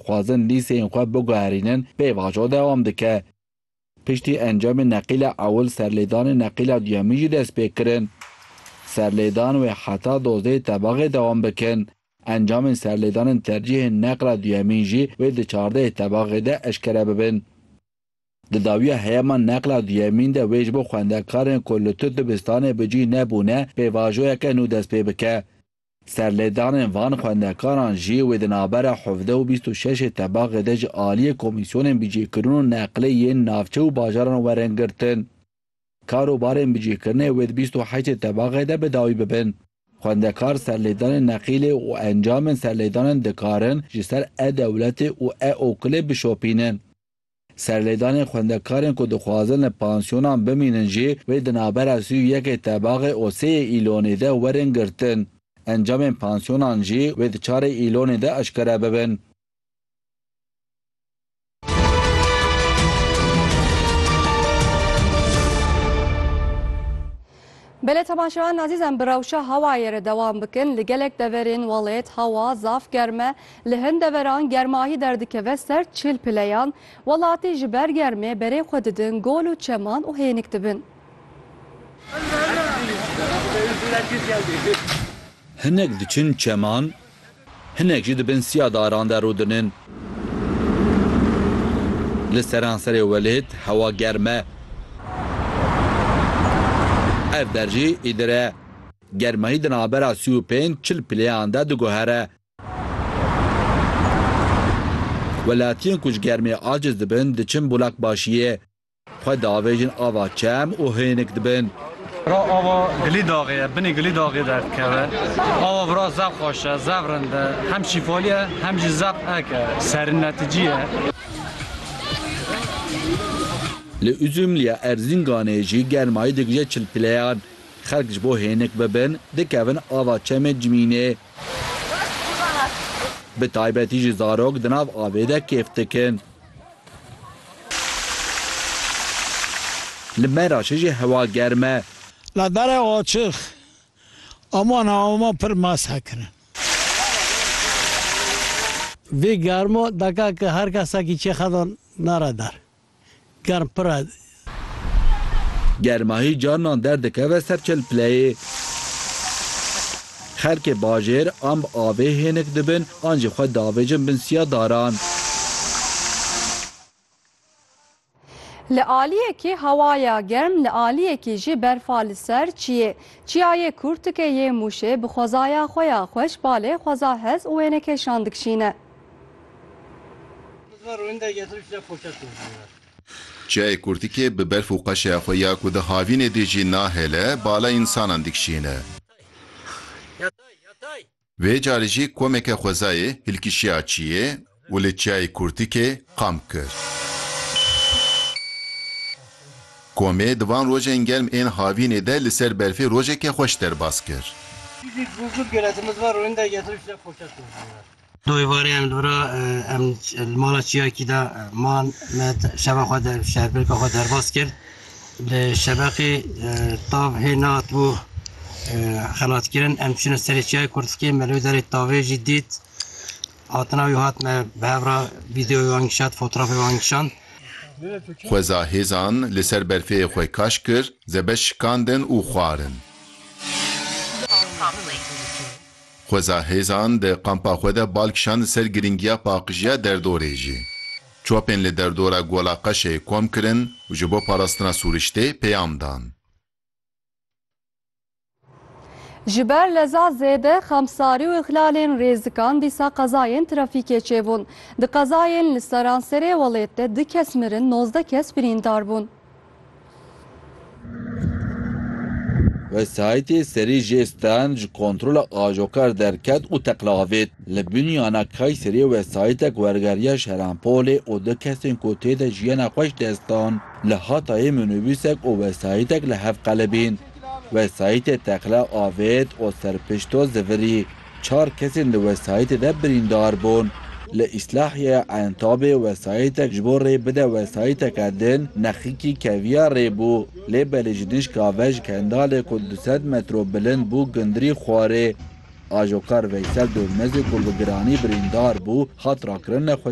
dixwazin lîseyên xwe biguherînin pêvajo dewam dike. Piştî encamê neqîla ewil serlêdanê neqîla duyemîn jî dest pê kirin. Serlêdan wê heta dozdehê tebaxê dewam bikin. Encamên serlêdanên tercîhên neqla duyemîn jî wê di çardehê tebaxê de eşkere bibin. Di dawiya heyema neqla duyemîn de wê ji bo xwendekarên ku li tu dibistanê bi cih nebûne pêvajoyeke nû dest pê bike. Serlêdanên van xwendekaran jî wê di navbera hevdeh û bîst û şeşê tebaxê de ji aliyê komîsyonên bicêkirin û neqlê yên navçe û bajaran werin girtin. Kar û barên bicêkirinê wê di bîst û heştê tebaxê de bi dawî bibin. Xwendekar serlêdanên neqîlê û encamên serlêdanin dikarin ji ser e-dewletê û e-okilê bişopînin. Serlêdanên xwendekarên ku dixwazin li pansiyonan bimînin jî wê di navbera sî û yekê tebaxê û sêyê Îlonê de werin girtin. Encamên pansiyonan jî wê di çarê Îlonê de eşkere bibin. Belê temaşevan azîzan bi rewşa hewayê re dewam bikin, li gelek deverên welêt hewa zaf germ e, li hin deveran germahî derdikeve ser çil pileyan, welatî ji ber germê berê xwe didin gol û çeman û hênik dibin. Hinek diçin çeman. Hinek jî di bin siya daran de rûdinin. Li seranserê welêt hewa germ e. Ev der jî îdir e. Germahî di navbera sî û pênc çil pileyan de diguhere. Welatiyên ku ji germê aciz dibin diçin Bulakbaşiyê. Xwe diavêjin ava çem û hênik dibin. Ra ava gilî daxê ye, binê gilî daxê derdikeve. Ava vira zaf xweş e, zaf rind e, hem şîfalî ye hem jî zaf ek e, serinneticî ye. Li Uzumliya Erzînganê jî germayî digije çil pileyan. Xelk ji bo hênik bibin dikevin ava çemê Cimînê. Bi taybetî jî zarok di nav avê de kêf dikin. Li Meraşê jî hewa germ e. La dere açix a wan a wan pir mast hekirin. Vê germo deke ke her kesekî çê xedan nere der. Germ pir e. Germahî carinan derdikeve ser çilpileyê. Xelkê bajêr an bi avê hênik dibin an jî xwe diavêjin bin siya daran. Li aliyekî hewaya germ, li aliyekî jî berfa li ser çiyê. Çiyayê Kûrtike yê Mûşê bi xwezaya xwe ya xweş balê xweza hez û wênekêşan dikişîne. Çiyayê kurtikê bi berf û qeşeya xwe ya ku di havînê dê jî nahêle, bala însanan dikişîne. Vê carî jî komeke xwezayê hilkişiya çiyê û li çiyayê kurtikê kamp kir. Komê di van rojên germ ên havînê de li ser berfê rojeke xweş derbas kir. Di êvarê em li vir a, em li mala çiyayekî de man, me şeva xwe der, şerbrêka xwe derbas kir. Li şebeqê tav hê nehatibû xelatkirin, em çûne serê çiyayê Kurtikê, me li wê derê tavê jî dît. Hatina wî hat me bi hev re vîdeoyê wan kişand, fotrafê wan kişand. Xweza hêzan li ser berfê xwe kaş kir, zebeş şikandin û xwarin. Xweza hêzan di kampa xwe de bal kişand li ser girîngiya paqijiya derdorê jî. Çapên li derdora Gola Qeşeyê kom kirin û ji bo parastina sûriştê peyam dan. Ji ber leza zêde xemsarî û îxlalên rêzikan dîsa qezayên trafîkê çêbûn. Di qezayên li seranserê welêt de du kes mirin, nozdeh kes birîndar bûn. Wesayîtê serî jê stand ji kontrola ajokar derket û teqla avêt. Li Bunyana Kayseriyê wesayîtek wergeriya Şeranpolê û du kesên ku tê de jiyana xwe ji dest dan. Li Hatayê minûbûsek û wesayîtek li hev qelibîn. Wesayîtê teqla avêt û serpişto zivirî. Çar kesên di wesayîtê de birîndar bûn. Li Îslahiyeya Entabê wesayîtek ji bo rê bide wesayîteke din nexikî keviya rê bû. Lê belê ji dijka ve ji Kendalê ku du sed metro bilind bû gundirî xwarê. Ajokar Veysel Dormezê ku bi giranî birîndar bû, hat rakirin nexweşxaneya